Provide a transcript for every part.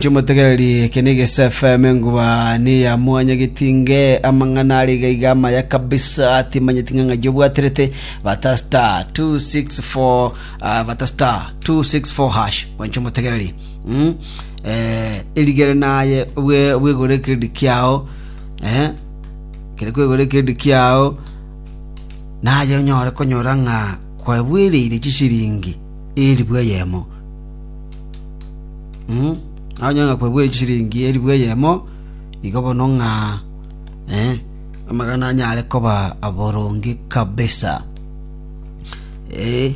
Timotegereri, eke negese FM enguba neya mwanya getinge amang'ana are iga iga amaya kabisa timanyeti ng'a ng'ai obwaterete bata star 264 ah, bata star 264 hash mwancho motegereri mm? eh, erigere naye obwe bwegore kiredi kiao eh? kere kwegore kiredi kiao naye onyore konyora ng'a kwabwereire chisiringi eri bweyemo Mhm. Onye ng'a kwegure chiringi elifu eyemo, igo bono ng'a eh amagana anyare koba aboronge kabisa. Eh.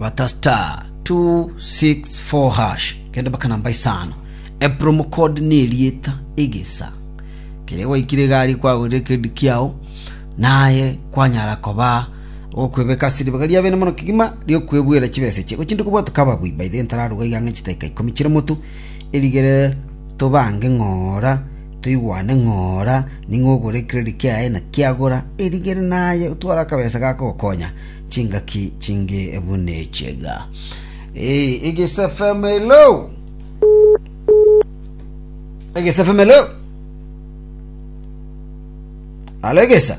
Bata star 264 hash. Kende mpaka namba isano. E promo code ne erieta egesa. Kere gwaikire iga aria kwagorire kedi kiao, naye kwanyara koba okwebeka ase ribaga ri'abene mono kegima ri'okwebuera chibesa echi. Gochinde kobua tokaba aboi baito gento tararuga iga ang'e chitaika ikomi chire motu, erigere tobange ng'ora, toigwane ng'ora, ning'o ogore credit kiaye na kiagora, erigere naye otware akabesa gaka gokonya chingaki chinge buna echi iga. Eh, Egeso FM hello. Egeso FM hello. Alo Egesa.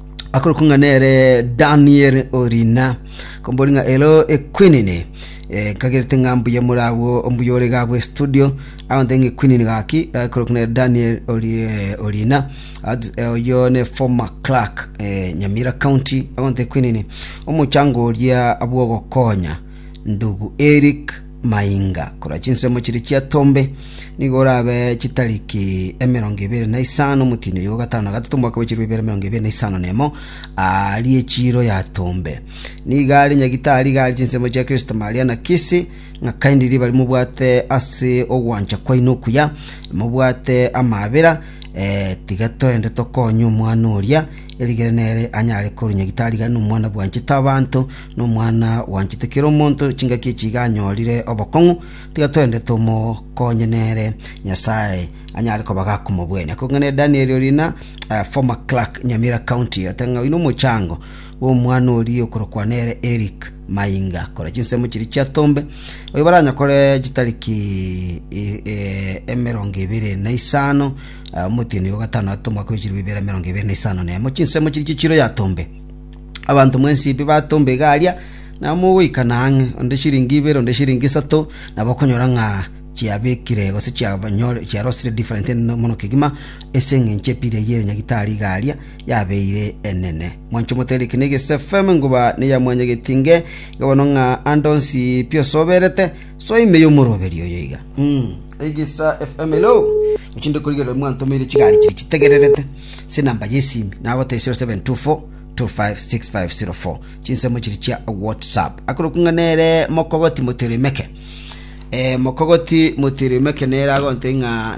akorokwa ng'a nere Daniel Orina, kombori ng'a ero equinini. Eh, nkagerete ng'a mbuya more agwo, mbuya ore iga agwo estudio, agonte ng'a equinini gaki, akorokwa nere Daniel Ori- eh, Orina, at- eh, oyio ne former clerk, eh, Nyamira County, agonte equinini, omochango oria bw'ogokonya ndugu Eric mainga korwa chinsemo chiria chiatombe, nigo orabe chitariki emerongo ebere na isano omotini oyo gatano na gatato omwaka bwe chirwe ibere emerongo ebere na isano na emo arie chiro yatombe. Nigo are nyagitari iga are chinsemo chia Kristo Maria na Kisi, ng'a kaindi riba rimobwate ase ogwancha kwaino okuya, mobwate amaabera, eh, tiga toende tokonye omwana oria, erigere nere anyare korwa nyagitari iga nomwana bwanchete abanto, Nomwana gwanchete kera omonto chingaki echi iga anyorire obokong'u, tiga toende tomokonye nere, Nyasae anyare koba gakomobwenia. Kong'aine Daniel oria na uh, former clerk Nyamira County oteng'a oino omochango bw'omwana oria okorokwa nere Eric Mainga kora chinsemo chiria chia Tombe oyo baranyakore chitariki e- e- emerongo ebere na isano uh, omotienyi wa gatano atomo akoichirwa ibere emerongo ebere na isano nemo chinsemo chiria chichiro ya Tombe Abanto mwensibi batomba egaaria, nabo mogoikana ang'e, onde chiringi ibere, onde chiringi isato, nabo okonyora ng'a chiabekire gose chiabanyore chiarosire different ene mono kegima ase eng'encho epira eyio ere nyagitari igaaria yabeire enene. Mwancho motere eke na Egesu FM ngoba neya mwanyageti inge iga bono ng'a ande onsi pi osoberete soa ime y'omoroberi oyo iga. Mm. Egesa FM hello. Ochinde korigerera mwantomeire chigari chiri chitegererete. Chinamba y'esimi nagotesia 0724256504 chinsemo chiria chia whatsapp akorokwa ng'a nere mokogoti motirimeke Eh, mokogoti motirimeke nere agonte ng'a